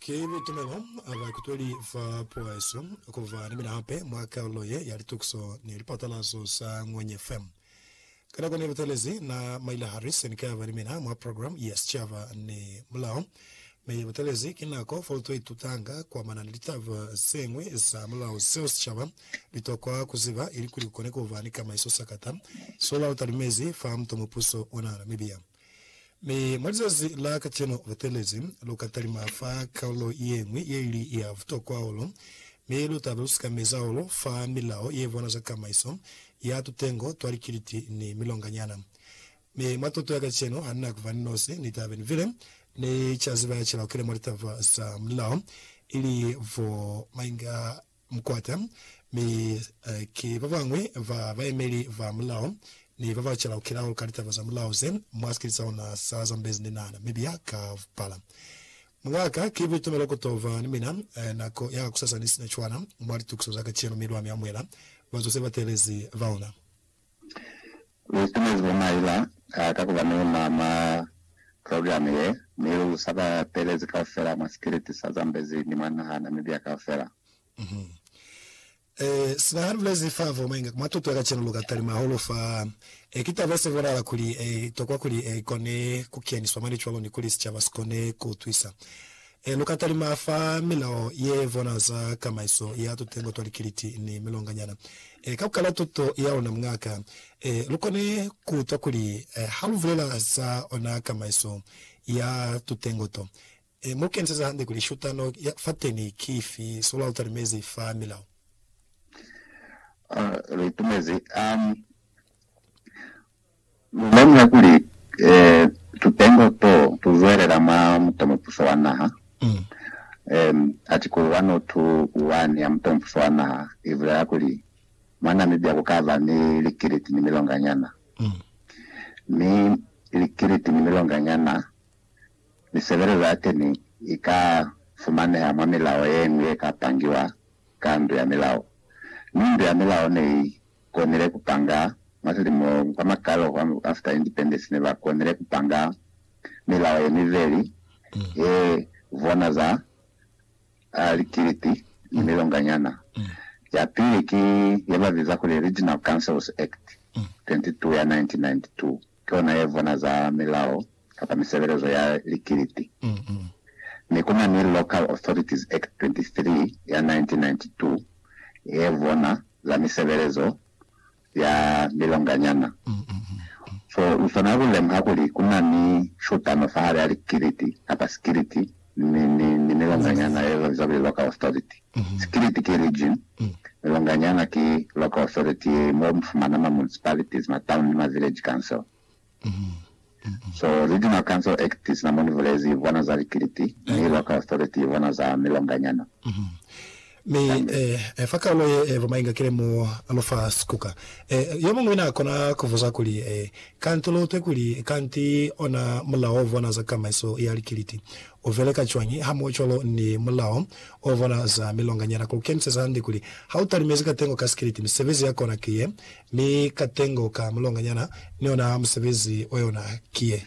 Ki litumelo a ba kutweli fa pueso ku ba ni mina hape mwa kalulo ye ya litukiso ni lipatalazo za Ngwenye FM. Ka nako ne butelezi na maila hali se ni ka ba ni mina mwa program ya sicaba ni mulao, mi ye butelezi ki nako fo lu to itutanga kwa mana ni litaba ze ñwi za mulao zeo sicaba li tokwa ku ziba ilikuli ku kone ku ba ni kamaiso sakata. Sola u talumezi fa mutomupuso ona na mibia. Mi mwa lizazi la kacenu lu telezi, lu ka talima fa kalulo ye ñwi ye li ya butokwa hahulu, mi lu ta ba lu sikamezi hahulu fa milao ye bona za kamaiso ya tutengo twa likiliti ni milonganyana. Mi mwa tuto ya kacenu, ha ni na ku ba ni nosi, ni ta be ni bile ni ca ziba ya cila ukile mwa litaba za mulao, ili bo mainga, Mukwata, mi ki babañwi ba bayemeli ba mulao ni baba chelaukilau ka litaba za mulao ze mwa sikili sa ona sa Zambezi ni Nana, Mibia, Kampala. Mwaka, ki buitumelo ku to ba ni mina nako ya kakusasa ni sina cwana mwa litukiso za kacenu mi lwa mi amuhela bazo se ba teelezi baona. Lu itumezi bo maila a ka kuba ni luna mwa program ye, mi lu sa ba pelezi kaufela mwa sikiliti sa Zambezi ni mwa naha ya Namibia kaufela. Sina ha lu bulezi fa vo mainga ku mwa tuto ya kacenu, lu ka talima hahulu fa e kitabe se bonala kuli e tokwa kuli i kone ku keniswa mwa licwalo ni kuli sicaba si kone ku utwisa. He lu ka talima fa milao ye vona za kamaiso ya tutengo twa likiliti ni milonganyana, e, ka ku kala tuto ya luna mungaka, e, lu kone ku utwa kuli ha lu bulela za ona kamaiso ya tutengo to, e, mu keniseza hande kuli shutano ya fateni ki ifi, so lwa lu talimezi fa milao. A lu itumezi, a. Lu lemuha kuli tupengo to tu zwelela mwa mutomupuso wa naha. Atikulu 102.1 ya Mutomupuso wa Naha i bulela kuli, Mwa Namibia ku ka ba ni likiliti ni milonganyana, mi likiliti ni milonganyana misebelezo ya teni i ka fumaneha mwa milao ye ñwi ye ka pangiwa ka ndu ya milao, mi ndu ya milao ne i konile ku panga mwa silimo kwa makalo kwa after independence ne ba konile ku panga milao ye miveli he vona za likiliti ni milonganyana. Ya pili ki ye ba biza kuli Regional Councils Act 22 ya 1992. ki ona ye vona za milao kapa misebelezo ya likiliti, mi ku na ni Local Authorities Act 23 ya 1992 ye vona za misebelezo ya milonganyana. So, lu swanela ku lemuha kuli ku na ni shutano fahali ha likiliti kapa sikiliti mi, mi, mi milonganyana ye lwa zalwi local authority, Sikiliti ki region, milonganyana ki local authority ye mo mu fumana ma municipalities, ma town ni ma village council. So Regional Council Act sina mo ni bulezi, i bwana za likiliti, mi local authority i bwana za milonganyana. Mi e, fa kaalo ye e buma inga kile mu lufa sikuka. E, yomuñwi na kona kubuza kuli, E, kanti luutwe kuli, kanti ona mulao ovona za kamaiso ya likiliti ubeleka cwañi hamuocwalo ni mulao ovona za milonganyana, kukeniseza hande kuli ha utalimezi katengo ka sikiliti, misebezi ya kona ki ye, mi katengo ka mulonganyana ni ona musebezi oyona ki ye?